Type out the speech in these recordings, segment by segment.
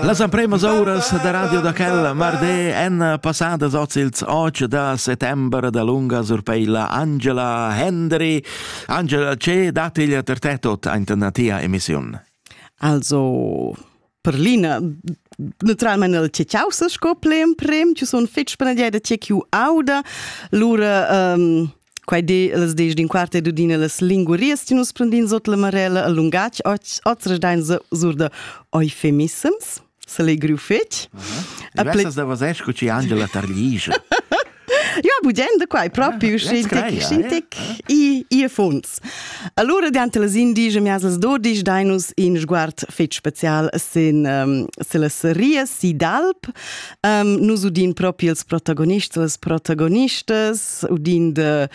Las empremas uras da radio da quel mardi èn passadas oz ils 8 da settembre da lunga surpeila Angela Hendry. Angela, ce dat il per te tot ina tia emissiun? Also, per l'ina naturalment il che causa sco plen prem, ci sono fitch per da tiek ju auda, lura um, Quai di las dies din quart e dudina las lingurias ti nus prendin sot la marella a lungatg ots dain sur da eufemissems se legriu fetg. Avessas da was esco ci Angela Tarlija. Ja, budende quai proprio ah, scientic, scientic i, i funds. Allora diante las indige miasels dodisch dainus in sguard fetg special sin um, se las ria si d'alp. Um, nus udin proprio els protagonists, las protagonistas, udind äh,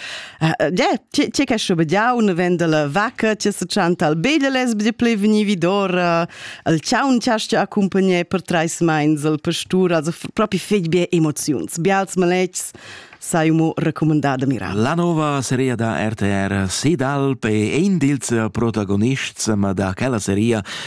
ja, ti che schobediau ne venda la vacca ti se chanta al bede les bdi ple veni vidor al chaun chasti accompagné per treis meins al pastur also propi feg be emoziuns bials malecs sei mo recomandada mira. La nova seria da RTR Sidalp è ein dils protagonists, ma da quella seria